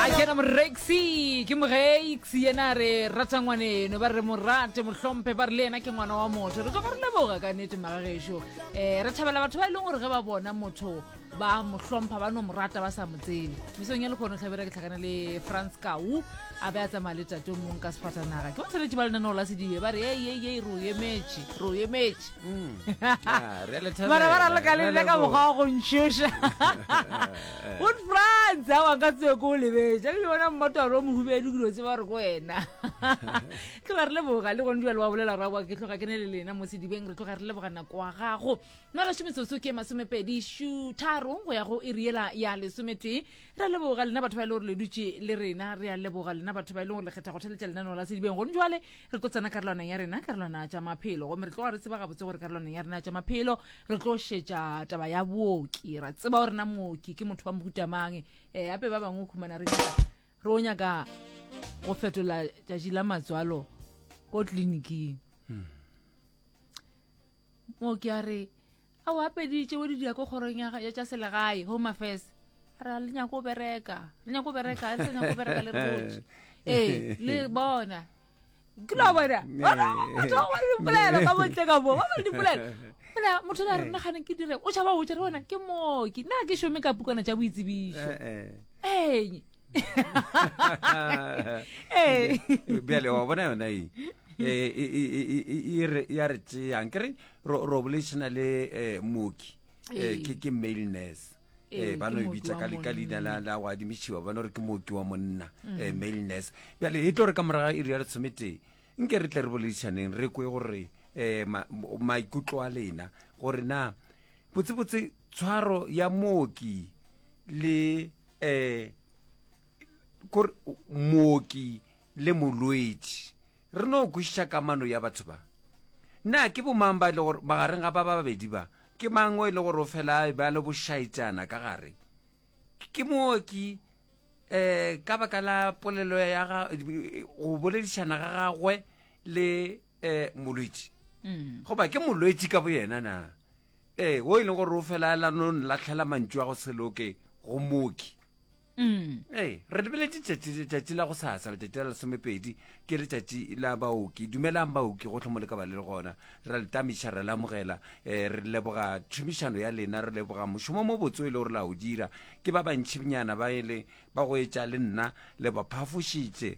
a kena morexi ke morexi yena a re rata ngwaneno ba re mo rate mo hlomphe ba re le yena ke ngwana wa motho re tloga re leboga ka nete magagešo um eh, re thabela batho ba e leng gore ge ba bona motho ba mo hlompha ba no mo rata ba sa mo tsebe mesong ya lekgono tlhabera ke tlhakana le france kau a be a tsamaya le tate mong ka sefatanaga ke batsweletši ba lenaneo la sedibe ba re ei ei ei ro emetše ro emetše bara ba raloka le nna ka mokgwa wa go ntšhoša good france a wanka tseo ko o lebetša le bona mmotoro o mohubedu ke dio tse ba re ko wena tloga re leboga le gone jale wa bolela ra kwa ke tloga ke ne le lena mo sedibeng re tloga re leboga nako wa gago nna gašo metsotso ke masomepedi šutharong go ya go e riela ya lesometee re leboga lena batho ba e le gore le dutše le rena re a leboga lena batho ba e leng gore lekgetha go theletša lenaneo la sedibeng gone jale re tlo tsena karolwana ya rena karolwana tša maphelo gomme re tloga re tseba gabotse gore karolwana ya rena tša maphelo re tlo šetša taba ya booki ra tseba gore na mooki ke motho wa mohutamang um eh, ape ba bangwe o khumana re re o nyaka go fetola tšatši la matswalo ko tleliniking hmm. mooki a re a o apedi tšeo di diako kgorong ya ya tša selegae home affairs a re a le nyako o bereka le nyako o bereka a le sa nyako o bereka le re botse ee le bona ke lo bona batho ba gore dipolela ka bontle ka moo ba gore dipolela fela motho le a re nna gane ke dire o tšhaba o tšere ona ke mooki nna ke šome ka pukana tša boitsebišo ee ee bjale wa bona yona e ya re tšeyang ke re ro bolešana le um mooki um ke male nurse um ba no e bitsa ka leina la go adimišiwa ba no re ke mooki wa monna um mm. male nurse bjale e tlo re ka moraga e re ya re tshometee nke re tle re boledišaneng re kwe gore um maikutlo a lena gore na botsebotse tshwaro ya mooki le eh kore mooki le molwetši re no kwešiša kamano ya batho ba na ke bomang ba e le gore magareng ga ba ba babedi ba ke mang o e le gore o fela a ba le bošaetšana ka gare ke mooki eh ka baka la polelo ya ga go boledišana ga gagwe le eh molwetši mm. goba ke molwetši ka boyena na Ee, wo e leng gore o felaela no nlatlhela mantšu a go se loke go mooki. Ee, re lebeletse tšatši letšatši la go sasa letšatši la lesomepedi ke letšatši la baoki dumelang baoki gotlhe mo le ka ba le le gona ra le tamiša ra le amogela um re leboga tšhomišano ya lena re leboga mošomo mo botse o e le gore la o dira ke ba bantšhinyana ba ele ba go etša le nna le ba phafošitše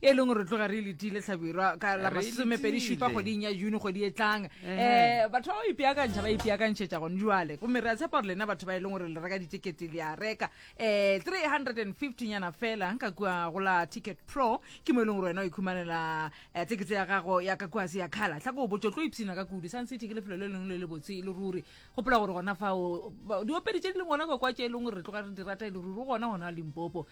e leng gore tloga re letile tlhabirwa ka la masomepedi šupa kgweding ya june kgwedi e tlang um batho ba ba ipeakantšha ba ipeakantšhetša gone jale gomme re a tshepa gore lena batho ba e leng gore le reka ditekete le a reka um 350 nyana fela ka kua go la ticket pro ke mo e leng gore wena o ikhumanela um tekete ya gago ya ka kuase ya kgala tla ko botso tlo ipshina ka kudu sun city ke lefelo le lengwe le le botse e le ruri gopola gore gona fao diopedi tse di leng gona kwa kwa tse e leng gore re tloga re di rata e le ruri gona gona limpopo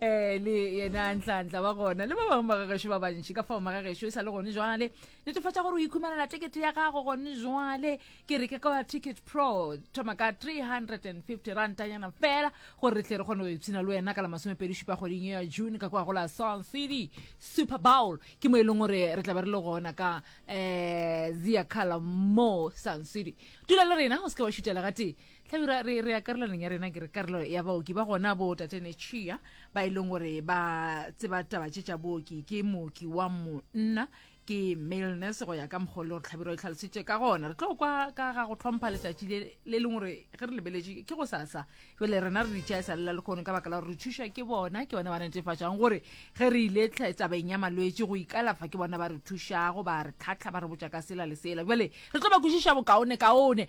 um le yena ntlantla wa gona le ba bangwe ba gagešo ba bantši ka fao magagešo e sa le gone jwale netefatša gore o ikhumanela tekete ya gago gone jwale ke re ke ka ticket pro thoma ka 350 rantanyana fela gore re tle re kgone go ipshina le wena ka la masomepedi šupa kgweding ya june ka kwa go la sun city super bowl ke mo e leng gore re tla be re le gona ka um zia cala mo sun city dula le rena o se ke wa šutela gatee hlabirwa re re ya karolaneng ya rena ke re karolo ya baoki ba gona bo tatene chia ba e leng gore ba tseba taba tše tša booki ke mooki wa monna ke male nurse go ya ka mokgwa le gore tlhabiro e tlhalositše ka gona re tlo kwa ka ga go tlhompha letšatši le le leng gore ge re lebeletše ke go sasa jale rena re ditšha e sa lela lekgono ka baka la gore re thuša ke bona ke bona ba netefatšang gore ge re ile tabeng ya malwetse go ikalafa ke bona ba re thušago ba re tlhatlha ba re botša ka sela le sela jale re tlo ba kwešiša bokaone kaone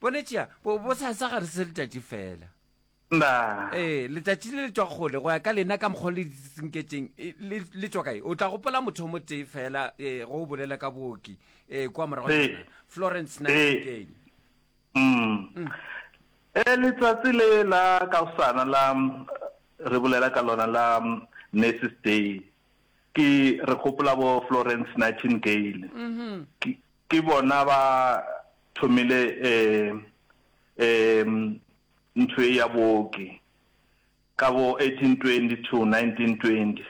Bone tšea, bo, bo sa, sa gare se letšatši fela. Na. Ee, letšatši le le tšwa kgole, go ya ka lena ka mokgwa le disinketšeng, e, le, le tšwa kae? O tla gopola motho o motee fela, ee, go o bolela ka booki, ee, kwa morago Ee. nyana, Florence Ee. Nightingale. Mm. E, letsatsi le la kaosana la, re bolela ka lona la Nurses Day, ke, re gopola bo Florence Nightingale. Ke, Ke bona ba thomile ntho e ya booki ka bo 1820 to 1920.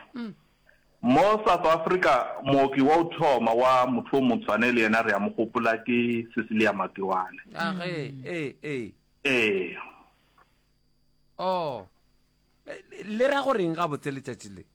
Mo South Africa mooki wa go thoma wa motho o motshwane le yena re a mo gopola ke Cecilia Makiwane. Age, e, e. Ee. Oh. Le ra go reng gabotse letšatši le?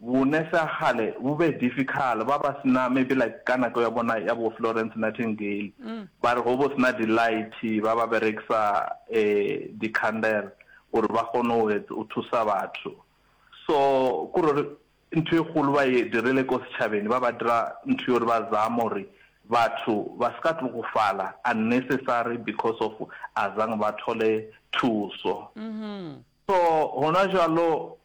Bone sa kgale bo be difficult, ba ba sena maybe like ka nako ya bona ya bo Florence Nightingale, ba re go bo sena di light ba ba berekisa di candle gore ba kgone go thusa batho. So ko re ntho e kgolo ba e dirile ko setšhabeng ba ba dira ntho ye gore ba zama gore batho ba se ka tlogofala unnecessary because of azange ba thole thuso. So gona jalo,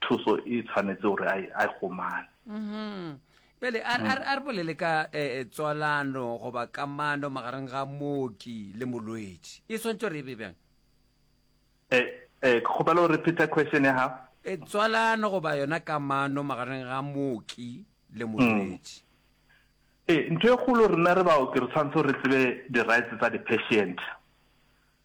Thuso e tshwanetse gore a e kgomane. Bjale a re bolele ka tswalano goba kamano magareng ga mooki le molwetši. E swanetše gore e be bjang? Ke kgopela o repeater question ya gago. Tswalano goba yona kamano magareng ga mooki le molwetši. Ee, ntho e kgolo rena re baoki re tshwanetse re tsebe di-rights tsa di-patient.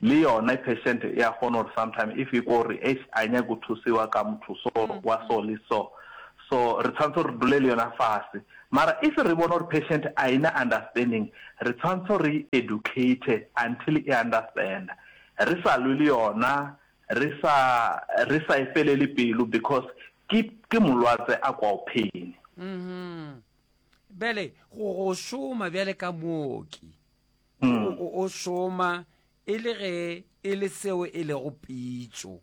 Le yona patient ya kgona gore sometime if e kwa gore eish a nyake go thusiwa ka motho so wa so le so, so re tshwanetse re dule le yona fase. Mara if re bona gore patient a ena understanding re tshwanetse re educate until e understanda, re sa lwe le yona, re sa re sa e felele pelo because ke ke molwatse a kwago pain. Bjale go go šoma bjale ka mooki. O, o šoma e le ge e le seo e lego pitšo.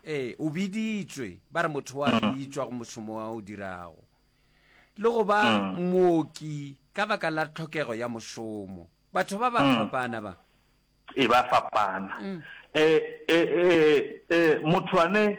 Ee, o biditšwe, ba re motho wa bitšwa go mošomo wa o dirago. Le go ba mooki ka baka la tlhokego ya mošomo. Batho ba ba fapana ba. E ba fapana. E, e, e, e, motho ane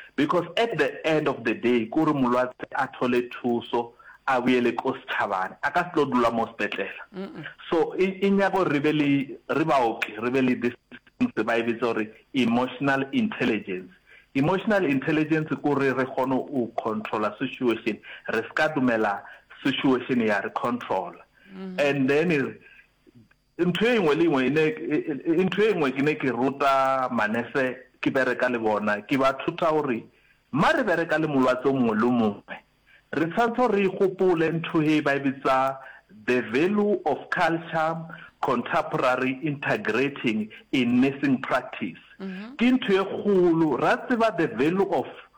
Because at the end of the day ke gore molwatse a thole thuso a boele ko setšhabane, a ka se tlo dula mo sepetlela. So e, e nyaka gore re be le, re baoki re be le this things ba e bitsa gore emotional intelligence. Emotional intelligence ke gore re kgone go controla situation, re se ka dumela situation ya re controla. And then Ntho e ngwe le engwe ene e, ntho e ngwe kene ke rota manese ke bereka le bona, ke ba thota gore ma re bereka le molwatse o mongwe le o mongwe, re tshwanetse gore re e gopole ntho he ba e bitsa the value of culture contemporary integrating in nursing practice. Ke ntho e kgolo, ra tseba the value of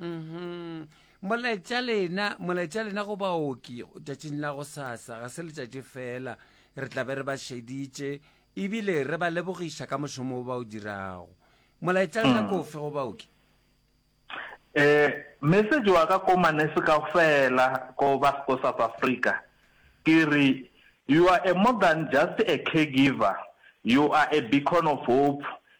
Mm-hmm. Molaetša lena, molaetša lena go baoki tšatšing la go sasa, ga se letšatši fela, re tla be re ba šeditše ebile re ba lebogiša ka mošomo o ba o dirago. Molaetša lena mm. kofe go baoki? Eh, message wa ka ko manese ka fela ko ba ko South Africa. Ke re you are a more than just a caregiver. You are a beacon of hope.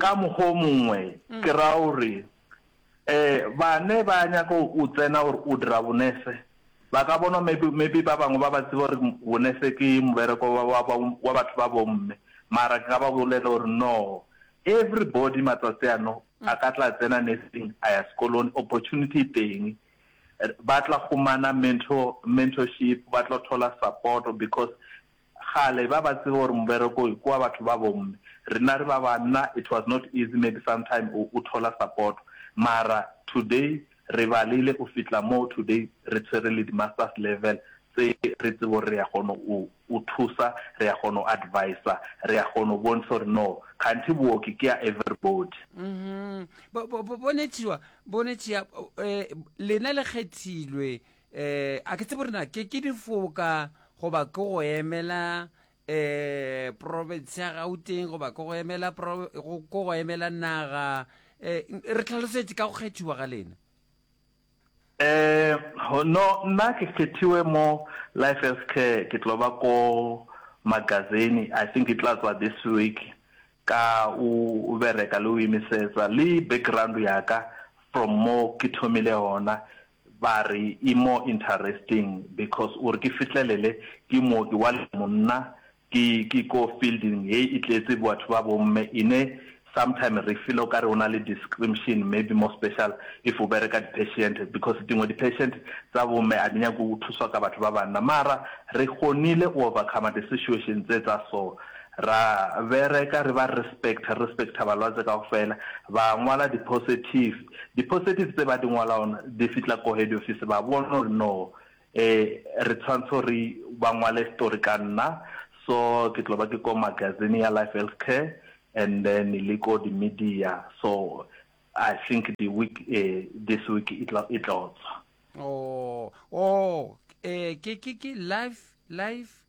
Ka mokgwa o mongwe, ke ra gore, e, bane ba nyaka go tsena gore o dira bonese, ba ka bona maybe, maybe ba bangwe ba ba tseba gore bonese ke mobereko wa, wa, wa, wa batho ba bomme, mara ke ka ba bolela gore no, everybody matsatsi ano a ka tla tsena nursing, a ya sekolong, opportunity e teng, ba tla khumana mentor, mentorship, ba tlo thola support because Kgale ba ba tseba gore mobereko ke wa batho ba bomme. Rena re ba banna it was not easy maybe sometime o thola support mara today re balile o fitla mo today re tshwere le di masters level tse re tsebo re ya kgono o o thusa re ya kgono advisor re ya kgono bontsha gore no khanthi booki ke ya everybody. Mhm. Bo bo bo bo ne tšiwa bo ne tšia eh lena le kgethilwe. um a ke tsebo rena ke ke difoka goba ke go emela um province ya gauteng goba ke go emela pro- go- ke go emela naga um re tlhalosetse ka go kgethiwa ga lena Eh, ho- no nna ke kgethiwe mo life health care ke tlo ba ko magazine i think e tla tswa this week ka o o bereka le o imisetsa le background yaka from mo ke thomile gona Ba re e more interesting because o re ke fihlelele ke mooki wa le monna ke ke ko fielding ye e tletse batho ba bomme ine sometime re feel o ka re o na le discrimtion maybe more special if o bereka di patient because dingwe di patient tsa bomme a di nyake go thuswa ka batho ba banna mara re kgonile o overcome di situation tse tsa so ra bereka re ba respect respecta balwatse ka go fela ba ngwala di positive Di-positive tse ba di ngwalaon di fitla ko head office ba bona gore no eh re tshwantshe gore ba ngwale story ka nna so ke tlo ba ke ko magazine ya Life Health Care and then le ko di-media so I think the week eh this week e tla e tlo tswa. Oh, oh, eh, ke, ke, ke life, life,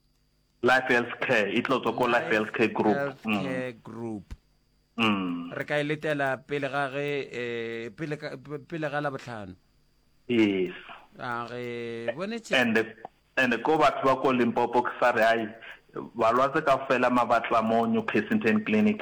Life Health Care e tlo tswa ko Life Health Care Group. Life Health mm. Care Group. Mm. Re ka e letela pele ga ge eh, pele pele ga la botlhano. Yes. A re bonetse. And the, and ko batho ba ko Limpopo ke sa re ai balwatse ka fela mabatla mo New Kensington Clinic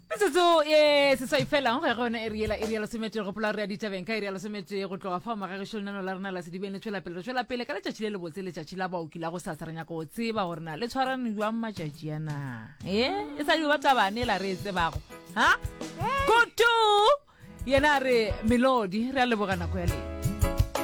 metsotso e seswai fela go ya go yona e riela e rialo semetee gopola re ya ditabeng ka e rialo semetee go tloga fao magagešo lenano la rena la sedibeng le tšwela pele re tšwela pele ka letšatši le lebotse letšatši la baoki la go sasa re nyaka go tseba gore na le tshwarane jwang matšatši ya na e e sa diba tabane la re e tsebago ha goto yena a re melodi re a leboga nako ya lena